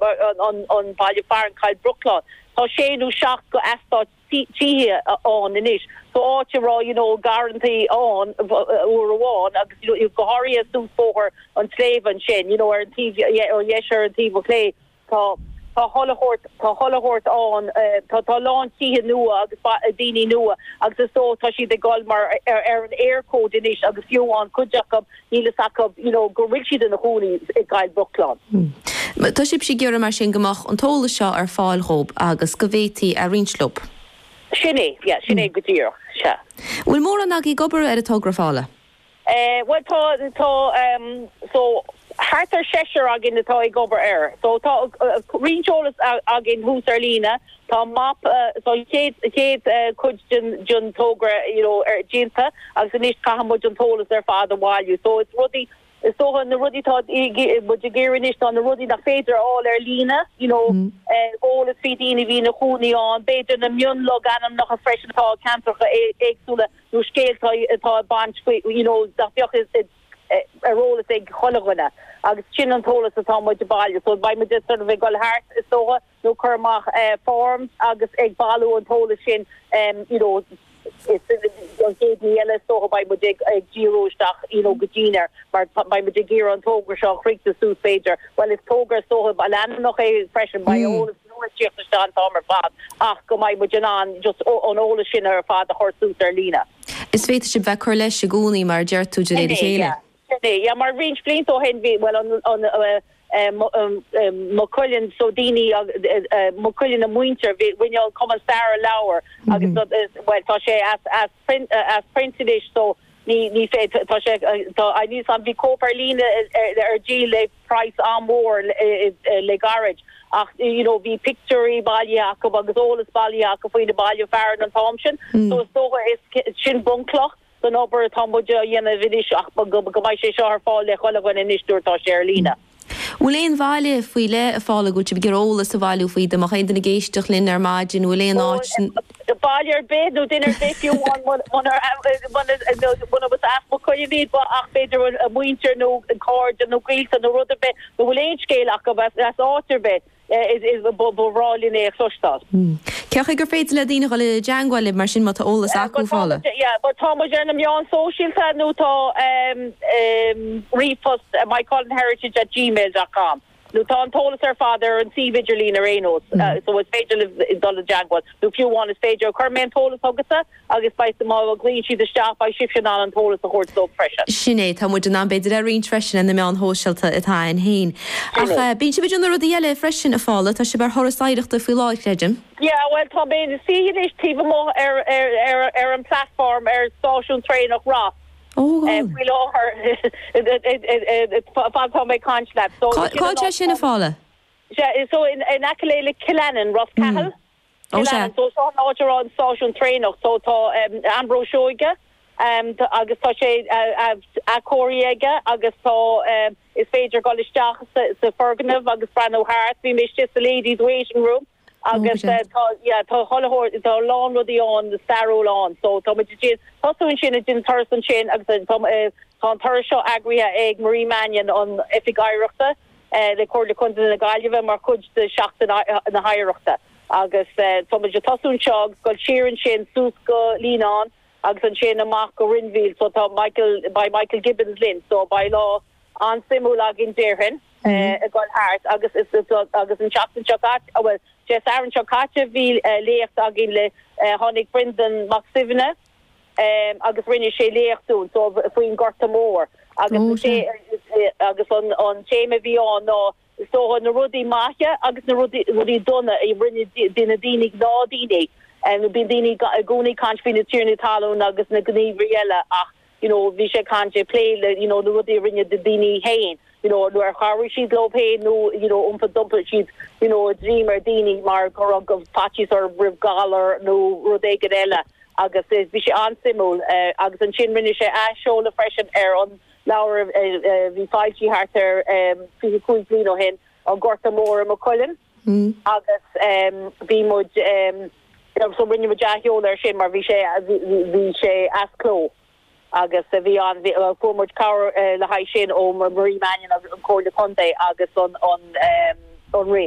mar an baile fearainn Coill Bhruachláin. Tá sé nó seacht go eastáit tithe ann anois. So áit a raibh you know garrantaí ann uair amháin agus you know go háirithe suas Bóthar an tSléibhe ansin you know ar an taobh ó dheis ar an taobh ó chlé tá tá tholl a thabhairt tá tholl a thabhairt ann tá tá a lán tithe nua agus daoine nua agus is dóigh tá siad ag dul mar ar an Eircode anois agus fiú amháin cuid acu Níl fhios acu you know go bhfuil siad ina gcónaí i gCoill Bhruachláin. Tá sibhse ag iarraidh mar sin go mbeadh an t-eolas seo ar fáil dhóib agus go bhféadtaí a roinnt leob? Sin é, yeah, sin é go díreach, sea. Bhfuil mórán agaí ag obair ar an togra, a Phaula? Bhuel tá, tá ehm so thart ar seisear againn atá ag obair air. So tá roinnt eolas againn thuas ar líne Tá mapa don chéad chuid den togra you know déanta agus anois caithfidh muid an t-eolas ar fad a bhailiú. So is rudaí, is dócha na rudaí atá muid ag iarraidh anois ná na rudaí nach féidir a fháil ar líne you know eh eolas faoi daoine a bhí ina chónaí ann, b'fhéidir na mionlogainmneacha freisin atá i ceantracha éagsúla nó scéalta atá ag baint faoi you know nach mbeadh ar eolas ag chuile dhuine agus sin an t-eolas atá muid a bhailiú. So beidh muid sort of ag dul thart is dócha. nó cur amach form agus ag bailiú an t-eolas sin you know is an chéad ní eile is dócha beidh muid ag díriú isteach you know go dian air mar beidh muid ag iarraidh an togra seo a chriochnú suas b'fhéidir bhuel is togra is dócha ba leanúnach é freisin beidh eolas nua ag tíocht isteach an t-am ar fad ach go mbeidh muid in ann just an eolas sin ar fad a chur suas ar líne. Is féadfaidh sibh bheith cur leis i gcónaí mar a deir tú de réir a chéile. Yeah. Sin é, yeah, mar roinnt blianta ó shin bhí, bhuel an, an, Maigh Cuilinn, so daoine, Maigh Cuilinn a muintir, bhí, rinne an Cumann Staire leabhar agus na, bhuel tá sé as, as print, as print anois so ní, ní féidir, tá sé, tá, I níos ann, bhí cóip ar líne ar, ar díol le praghas an-mhór le gairid ach you know bhí pictiúirí bailithe acu agus eolas bailithe acu faoi na baile fearainn an t-am sin so is dócha, is sin bunchloch. san obair atá muid a dhéanamh anois ach go mbeidh sé seo ar fáil le chuile dhuine anois nuair atá sé ar líne. An bhfuil aon bhaile faoi leith, a Phaula, a bhfuil sibh ag iarraidh eolas a bhailiú faoi? Dá mbeadh aon duine ag éisteacht linn ar maidin, an bhfuil aon áit. Baile ar bith nó duine ar bith fiú amháin munar as Maigh Cuilinn iad ach b'fhéidir a muintir nó cairde nó gaolta nó rud ar bith nó an bhfuil aon scéal acu as áit ar bith? Ba bhreá linn é a chloisteáil. Cé chaoi gur féidir le daoine dhul i dteangmháil libh mar sin má tá eolas acu, a Phaula? Tá muid ar na meáin sóisialta nó tá ríomhphost moycullenheritage at gmail dot com nó tá an t-eolas ar fad ar an suíomh idirlín ar aon nós so is féidir libh dul i dteangmháil nó fiú amháin is féidir, chuir mé an t-eolas chugatsa? Agus beidh, má ghlaonn siad isteach, beidh sibhse in ann an t-eolas a thabhairt dóibh freisin. Sin é, tá muid in ann b'fhéidir a roinnt freisin ar na meáin shóisialta atá a'inn féin. Sin é. Ach bíonn sibh ag déanamh rudaí eile freisin a Phaula, tá sibh ar thuras oidhreachta faoi láthair creidim? Yeah, bhuel tá mé ag suí anois taobh amuigh ar, ar, ar, ar an bplatform ar stáisiún traenach Ross Oh, go eh bhfuil? faoi láthair fad atá mé ag caint leat. So Cá, sin cá an atá áit sin a Phaula? Sea, so in, in aice le, le Killannin, Ros Mm. Cathail. Ó sea. Cill Ainnín. So seo an áit a raibh an stáisiún traenach. So tá Ambrose Seoige agus tá sé athchóirithe aige agus tá, is féidir dul isteach sa fhoirgneamh agus breathnú thart. Bhí mé istigh sa ladies waiting room agus tá, yeah, tá chuile shórt, tá a lán rudaí ann stairiúil ann. So tá muid ag déanamh, tosú ansin ag déanamh turas ansin agus tá an turas seo eagraithe ag Marie Mannion, an Oifig Oidhreachta. le Comhairle Contae na Gaillimhe mar chuid de Sheachtain na hOidhreachta agus tá muid ag tosú anseo agus ag dul siar ansin suas go Líonán agus ansin amach go Rinn Mhaoile so tá Michael, beidh Michael Gibbons linn so beidh lá an-suimiúil againn déarfainn ag dul thart agus agus an tseachtain seo caite, bhuel Dé Sathairn seo caite bhí léacht againn le, tháinig Breandán Mac Suibhne. agus rinne sé léacht dúinn so faoin Gorta Mór agus an té agus an an téama a bhí ann ná so na rudaí maithe agus na rudaí rudaí dona a rinne na daoine gnáthdhaoine nó bíonn daoine i gcónaí caint faoi na tiarnaí talún agus na gníomhairí eile ach you know bhí sé caint ag plé le you know na rudaí a rinne daoine féin you know nó ar chabhraigh siad leo féin nó you know iompaigh d'iompaigh siad you know a ndroim ar daoine mar go raibh faitíos orthu roimh galar nó rud éigin eile agus bhí sé an-suimiúil agus ansin rinne sé athsheoladh freisin ar an leabhar a bhí foilsithe thart ar fiche cúig bliain ó shin An Gorta Mór i Maigh Cuilinn agus bhí muid so rinne muid athsheoladh ar sin mar bhí sé bhí sé as cló. agus a bhí ann, fuair muid cabhair le haghaidh sin ó Marie Mannion, an Comhairle Contae agus an Roinn.